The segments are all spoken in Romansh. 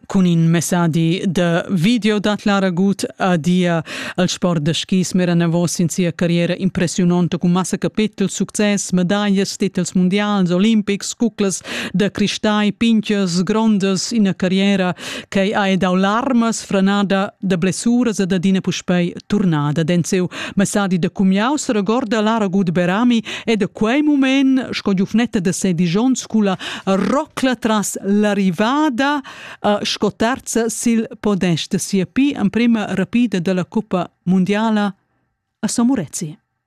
Cun in messadi da video dat Lara Gut adia al sport da skis mera enavos in sia carriera impressiunonta cun massa capetel, success, medaglias, titels mundials, olimpics, cuclas da cristai, pinchas grondas, ina carriera che ha dau larmas, franada da blessuras e da dina puspei turnada denzeu messadi da cumiau seregorda Lara Gudberami e da quei mument sco giufnetta da sedisch onns culla rocla tras l'arrivada uh, sco terza sil podest da sia pi emprema rapida dalla cuppa mundiala a San Murezi.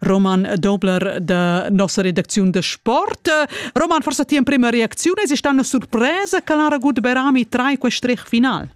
Roman Dobler da nossa redacziun de sport. Roman, forse ti prima reaczione, esista una surpresa che l'ha ragut Berami trai quel strech final?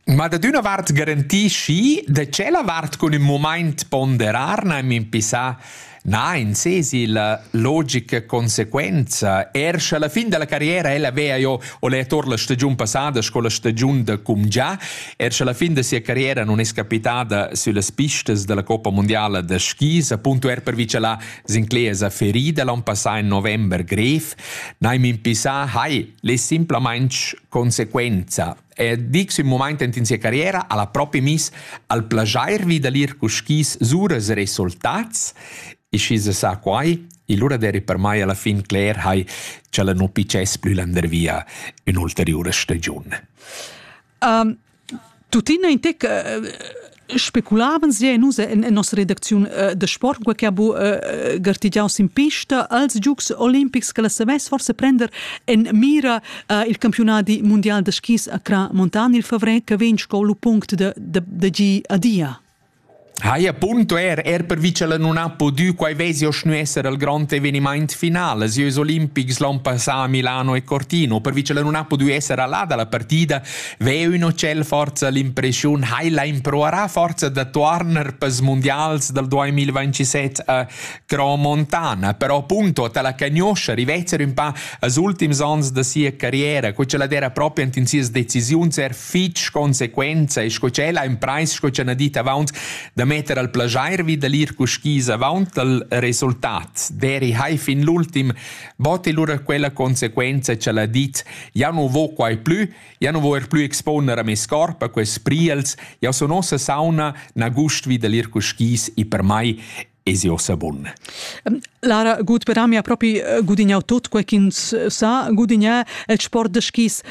Ma da d'una vart garantisci, da c'è la vart con il moment ponderar, na mi impissà Na, in sesi la logica conseguenza. Er sche alla fin della carriera ella vea io ho letto la stagiun passada, sco la stagiun da cum già, Er sche la fin da sia carriera non es capitada süllas pistas della Coppa Mondiala da skis, appunto er per vicelar Sinclair ferida l'an passà in november grev, neim impissà, hai, le simplamente conseguenza. E dics in moment in sia carriera alla propi mis al plagiar vi da lir cu skis suras resultats e schi se sa quai, e lura deri per mai alla fin cler hai, c'ella non pices plü landervia un'ulteriore stagione. Um, tuttina in tec uh, speculaven sie nus en, en nossa redacziun uh, de sport quei che ha bu uh, gartigiau sin pista als giugs olimpics che la savess forse prender en mira uh, il campionati mondial de skis a Cra Montan il favrer che vegn sco lu punct de de, de gi a dia. Hai appunto er, er pervi ch'el nun ha pudü, quai vesi oschnü esser il grond evenimaint final, els ieus olimpics l'on passà a Milano e Cortino, pervi ch'el nun ha pudü esser a là da la partida, veu ün hotel forza l'impreschiun hai la improarà forza da tuorner pels mundials dal 2027 a Cro Montana, però appunto ta la cagnoscha rivezzer ün pa als ultims ons da sia carriera, co ch'ella d'era propi ant in sias decisiuns er fitg consequenza e sco ch'ella ha imprais sco ch'ha dit avant da metter al plajair vi da l'ir cu skis avant al resultat. Deri hai fin l'ultim botti lura quella consequenza ch'ella ha dit ja nu vo quai plü, ja nu vo er plü exponer a mes corp a quels priels, ja sun ossa sauna, na gust vi da l'ir cu skis e per mai esi ossa bun. Lara gut per mi ha propi eh, gudignau tut quei ch'ins eh, sa gudignar el sport de skis.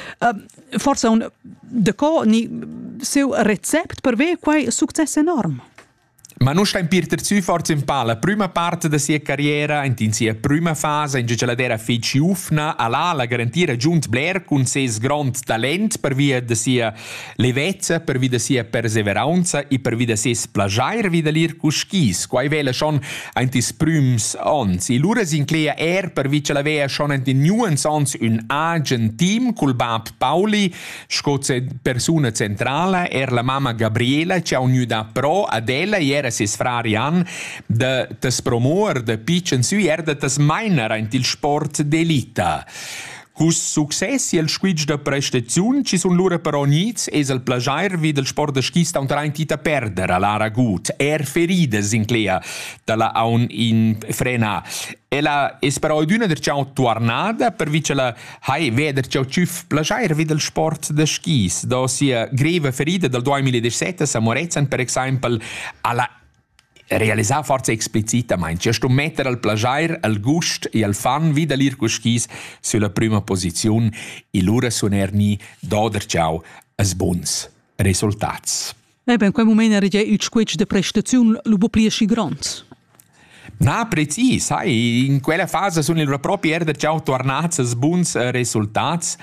Forsa un de co ni seu recept per ve quei succes enorm. Ma non sta in Peter Zü forza in palla. Prima parte da sia carriera, in sia prima fase in giaceladera feci ufna alla la garantira giunt Blair cun ses grond talent per via de sia Levezza pervi da sia perseveraunza e pervi da ses plajair vi da ir cus skis, quai vela schon aint ils prüms ons. E lura s'incleia er pervi cha la vea schon aint in nuans ons ün agen team cul bab Pauli sco persuna centrala, er la mamma Gabriela chi ha unüda pro ad ella e era ses frar Jan da tas promouer da pitschen sü er da tas mainer aint il sport d'elita. Hus successi el squitsch da prestaziun ci sun lura però gnits es el plajair vi dal sport da skis taunteraint ita perder a Lara Gut, er feridas in Clea da la aun in frena. Ella es però üdüna der ciao tuarnada pervi cha la hai veder ciao tschüf plajair vi dal sport da skis. Da sia greva ferida dal 2017 a Morezzan per exaimpel a la realisà forza explicitamain che sto metter al plaschair, al gust e al fan vi da l'ir cuschis sulla prüma posiziun e lura sun er ni doder ciao as buns resultats. E ben, quel moment era già il squetsch de prestaziun lu bu pli aschi grond. Na, precis, sai, in quella fase sun il propri er da ciao tornats als buns resultats.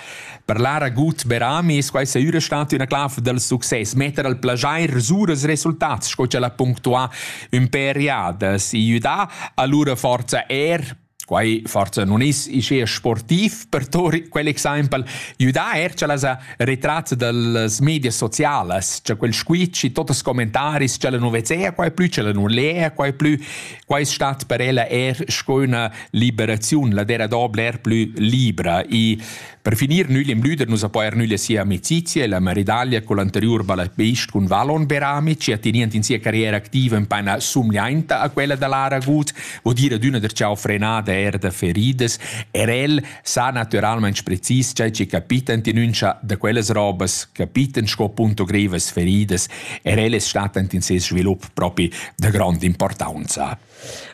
Parlar a gut per amis, quai saira stata üna clav dal success, metter al plajair suras resultats, sco ch'el ha punctuà ün pêr jadas. I üdà allura forza er Quai forza non is ischea sportiv per tor quell'exaimpel judà er cha las retrats dals media socialas, cha quel squitsch e totes commentaris cha la non vezea quai plü, cha la non lea quai plü, quai es stat per ella er sco üna liberaziun, la dera dobla er plü libra. I Per finir nüglim lüder nus a poer nüglia sia amicizia e la maridaglia col anteriur balletbeist cun Valon Berami, chi ha tenient in sia carriera activa in paina somiainta a quella da Lara Gut, vo dire ad üna der ciao frenada er da feridas, er el sa naturalmaing precis chai chi capitan tinuncha da quellas robas, capitan sco punto grevas feridas, er el es statant in ses svilup propi da grond importanza.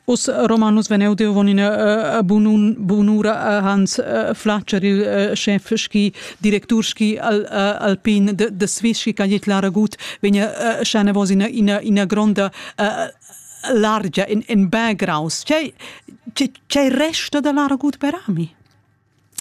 Us Romanus veneu deu von ina uh, bunun, bunura uh, Hans uh, Flatscher, il uh, chef schi directur schi al, uh, alpin de, de Swiss schi cagliet la ragut vegna uh, scene vos ina, ina, ina gronda uh, largia in, in background. C'è, c'è, c'è resta da la ragut per ami?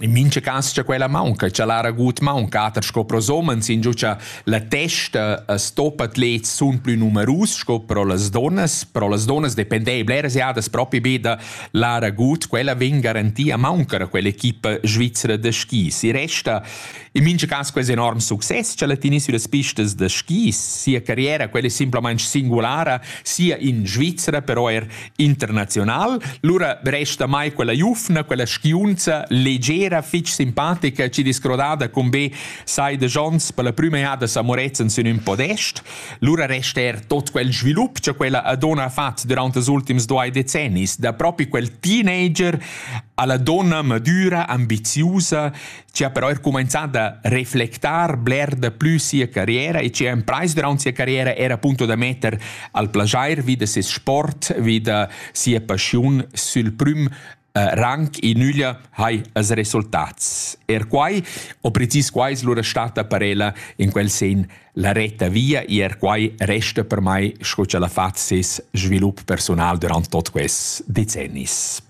In mincha cas cha quella maunca, cha l'ha ragut maunca ater sco pros homens, ingio cha la testa as stoppa atlets sun plü numerus sco pro las donnas. Pro las donnas dependei bleras jadas propi be da l'ha ragut. Quella vegn garantia a mauncar a quell'equipa svizzera da skis. I resta in mincha cas quest enorm success cha la tieni süllas pistas da skis. Sia carriera, quella è simplamaing singulara, sia in Svizzera, però eir internazional. Lura resta mai quella giufna, quella skiunza leggera, fitg simpatica, ci discrodada con be sai de Jons per la prima jada sa Moretzen sin un podest. Lura resta er tot quel svilup che quella Adona ha fatto durante les ultims due decennis, da proprio quel teenager alla donna madura, ambiziosa, ci ha però er cumanzà da reflectar bler da plü sia carriera e ci ha imprais durant sia carriera era appunto da metter al plagier vi da ses sport, vi da sia passiun sül prüm eh, rang e nüglia hai as resultats. Er quai, o precis quai es lura stata per ella in quel sen la retta via e er quai resta per mai sco ch'ella ha fat ses svilup personal durant tot quest decennis.